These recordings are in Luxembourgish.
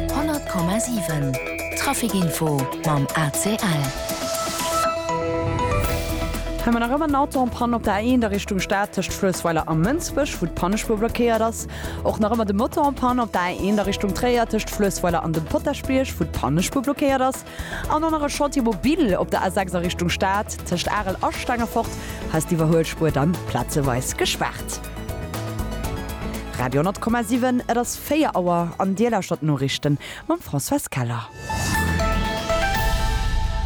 100,7 Trafic Info mam ACL. Hu mer nach ëmmer en Auto en Panne op der A1 a Richtung Stad tëscht Fluessweiler a Mënsbech, wou d'Pannespur blockéiert ass. Och nach ëmmer de Motor en Panne op der A1 a Richtung Tréier tëscht Fluessweiler an dem Potaschbierg, wou d'Pannespur blockéiert ass. An dann nach e Chantier mobile op der A6 a Richtung Stad, tëscht Arel a Stengefort ass d'Iwwerhuelspuer dann plazeweis gespaart. Radio 10,7, et ass 4 Auer an Dir lauschtert d'Noriichten mam Françoise Keller.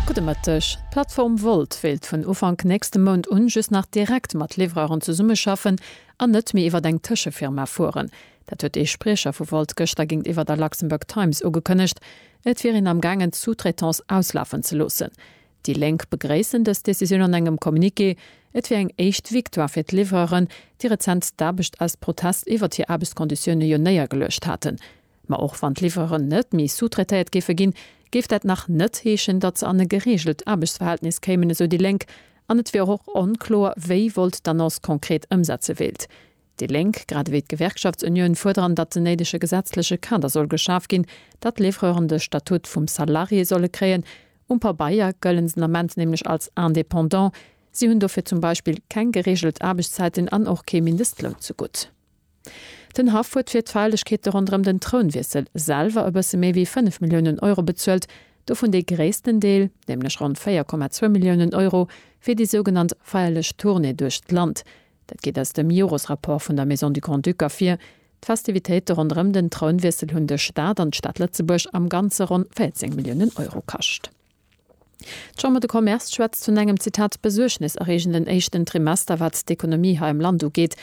Gudde Mëtteg. D'Plattform Wolt wéilt vun Ufank nächste Mount un just nach direkt mat Livreuren zesummeschaffen an net méi iwwert eng Tëschefirma fueren. Dat huet ee Spriecher vu Volt gëschter géintiwwer der Luxembourg Times ugekënnegt. Et wier een am gaangen d'Sous-traitance auslafen ze loossen. Déi Lénk begréissen dës Decisioun an engem Communiqué. Et wier eng éischt Victoire fir d'Liwwereren, déi rezent d'Aarbecht aus Protest iwwert hir Aarbechtskonditioune jo néiergeluecht haten. Ma och wann d'Liwweren net méi sous-traitéiert géife ginn, géif dat nach net heeschen, datt se an e gereegelt Aarbechtsverhältnis kéimen, esou déi Lénk. An et wier och onkloer, wéi Volt d'Annonce konkret ëmsetze wéilt. Déi Lénk, grad ewéi d'Gewerkschaftsunioun, fuerderen, datt den néidege gesetzleche Kader soll geschaf ginn, datt d'Livreuren de Statut vum Salarié solle kréien. Um Pabeier gëllen se den Ament nämlech als Indépendant. Si hunn dofir zum Beispill keng gereegelt Aarbechtszäiten an och kee Mindestloun zegutt. Den Haff huet fir d'Feierlechkeete ronderëm den Trounwiessel selwer e bësse méi wéi 5 Milliounen Euro bezuelt, dovun dee gréissten Deel, nämlech ronn 4,2 Milliounen Euro, fir déi sougenannt feierlech Tournée duerch d'Land. Dat geet aus dem Jores-Rapport vun der Maison du Grand-Duc ervir. D'Festivitéite ronderëm den Trounwiessel hunn de Staat an d'Stad Lëtzebuerg am Ganze ronn 14 Milliounen Euro kascht. D'Chambre de Commerce schwätzt vun engem, Zitat, besuergneserreegenden éischten Trimester, wat d'Ekonomie hei am Land ugeet.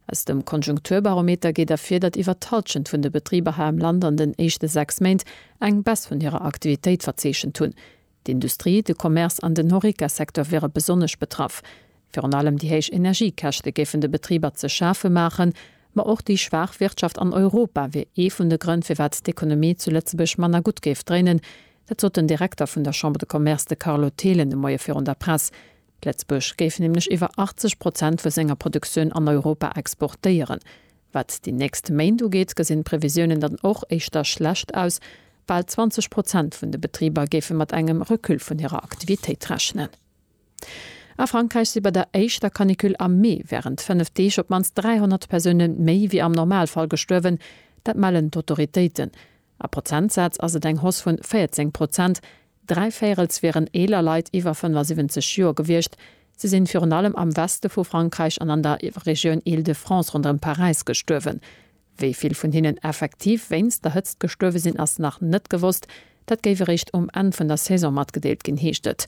Aus dem Konjunkturbarometer geet ervir, datt iwwer d'Hallschent vun de Betriber hei am Land an den éischte sechs Méint eng Baisse vun hirer Aktivitéit verzeechent hunn. D'Industrie, de Commerce an den Horeca-Secteur wiere besonnesch betraff. Virun allem déi héich Energiekäschte géifen de Betriber ze schafe maachen. Ma och déi schwaach Wirtschaft an Europa wier ee vun de Grënn, firwat d'Ekonomie zu Lëtzebuerg manner gutt géif dréinen. Dat sot den Direkter vun der Chambre de Commerce, de Carlo Thelen, de Moie virun der Press. Lëtzebuerg géif nämlech iwwer 80 Prozent vu senger Produktioun an Europa exportéieren. Wat déi nächst Méint ugeet, gesinn d'Previsiounen dann och éischter schlecht aus. Bal 20 Prozent vun de Betriber géife mat engem Recul vun hirer Aktivitéit rechnen. A Frankräich si bei der éischter Canicule am Mee wärend fënnef Deeg op d'mannst 300 Persoune méi wéi am Normalfall gestuerwen. Dat mellen d'Autoritéiten. A Prozentsaz ass et eng Hoss vun 14 Prozent. Dräi Véirels wieren eeler Leit iwwer 75 Joer gewiescht. Si sinn virun allem am Weste vu Frankräich an an der Regioun Île-de-France ronderëm Paräis gestuerwen. Wéi vill vun hinnen effektiv wéinst der Hëtzt gestuerwe sinn, ass nach net gewosst. Dat géif eréischt um Enn vun der Saison matgedeelt ginn, heescht et.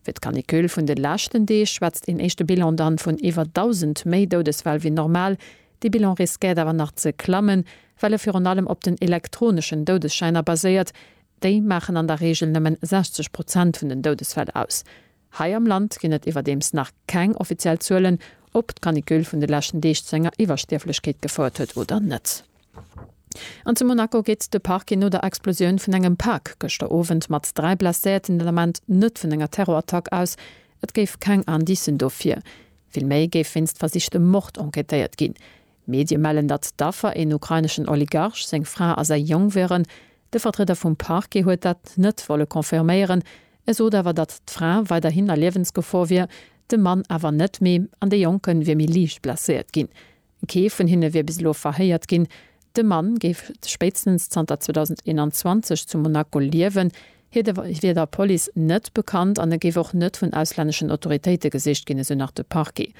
Fir d'Canicule vun de leschten Deeg schwätzt een éischte Bilan dann vun iwwer 1.000 méi Doudesfäll wéi normal. Dee Bilan riskéiert awer nach ze klammen, well e virun allem op den elektroneschen Doudesschäiner baséiert, Déi maachen an der Reegel nëmme 60 Prozent vun den Doudesfäll aus. Hei am Land ginn et iwwerdeems nach keng offiziell Zuelen, ob d'Canicule vun de leschten Deeg zu enger Iwwerstierflechkeet gefouert huet oder net. An zu Monaco geet de Parquet no der Explosioun vun engem Pak gëschter Owend mat dräi Blesséierten den Ament net vun enger Terrorattack aus. Et géif keng Indicen dofir. Vill méi géif wéinst versichtem Mord enquêtéiert ginn. Medie mellen, datt d'Affer een ukraineschen Oligarch, seng Fra a säi Jong wieren. De Vertrieder vum Parquet huet dat net wolle confirméieren. E sot awer, datt d'Fra weiderhin a Liewensgefor wier, de Mann awer net méi an de Jonke wier méi liicht blesséiert ginn. Kee vun hinne wier bis elo verhéiert ginn. De Mann géif spéitstens zanter 2021 zu Monaco liewen. Hie wier der Police net bekannt an e géif och net vun auslänneschen Autoritéite gesicht ginn, esou nach de Parquet.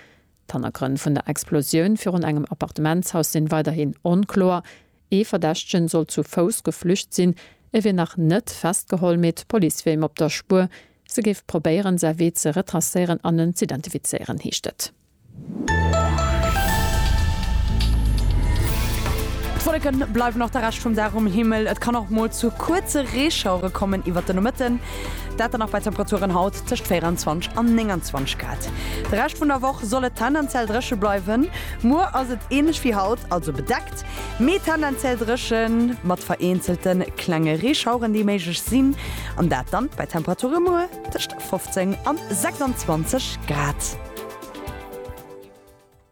D'Hannergrënn vun der Explosioun virun engem Appartementshaus sinn weiderhin onkloer. Ee Verdächtegen soll zu Fouss geflücht sinn. E wier nach net festgeholl, mee d'Police wier him op der Spuer. Se géif probéieren, säi Wee ze retracéieren an en z'identifizéieren, heescht et. D'Wolleke bleiwen och de Rescht vum Dag um Himmel. Et kann och mol zu kuerze Reeschauere kommen iwwert de Nomëtten. Dat dann nach bei Temperaturen haut tëscht 24 an 29 Grad. De Rescht vun der Woch soll et tendenziell dréche bleiwen. Muer ass et änlech wéi haut, also bedeckt, mee tendenziell dréche mat vereenzelte klenge Reeschaueren, déi méiglech sinn, an dat dann bei Temperature muer tëscht 15 an 26 Grad.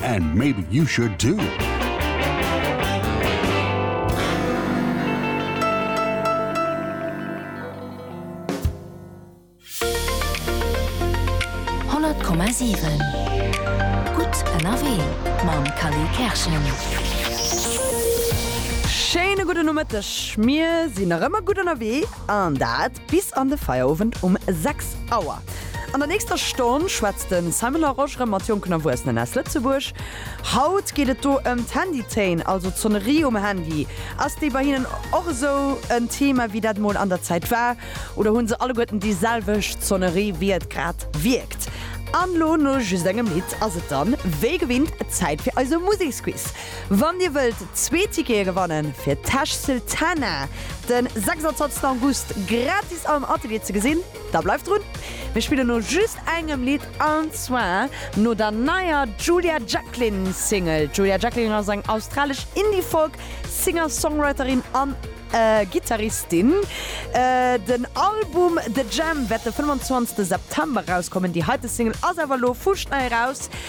And maybe you should too! Schéine gudde Nomëtteg, mir sinn nach ëmmer gutt ënnerwee an dat Bis an de Feierowend um 6 Auer. An der nächster Stonn schwätzt de Simon Larosche rëm mat jonken Erwuessenen aus Lëtzebuerg. Haut geet et do ëm d'Handytéin, also d'Sonnerie um Handy. Ass déi bei hinnen och esou en Thema, wéi dat mol an der Zäit war? Oder hunn se alleguerten déi selwecht Sonnerie, wéi et grad wierkt? An lo, no just engem Lidd, ass et dann wéi gewinnt Zäit fir eise Museksquiz. Wann dir wëllt zwee Tickete gewannen, fir Tash Sultana den 26 August gratis am Atelier ze gesinn, da bleift drun. Mir spillen no just engem Lidd an zwar no der neier Julia Jacklin Single. Julia Jacklin ass eng australesch Indie-Folk Singer-Songwriterin an Gittaristin. Den Album The Jam wäert de 25 September erauskommen. Déi heite Single ass awer elo fuschnei eraus.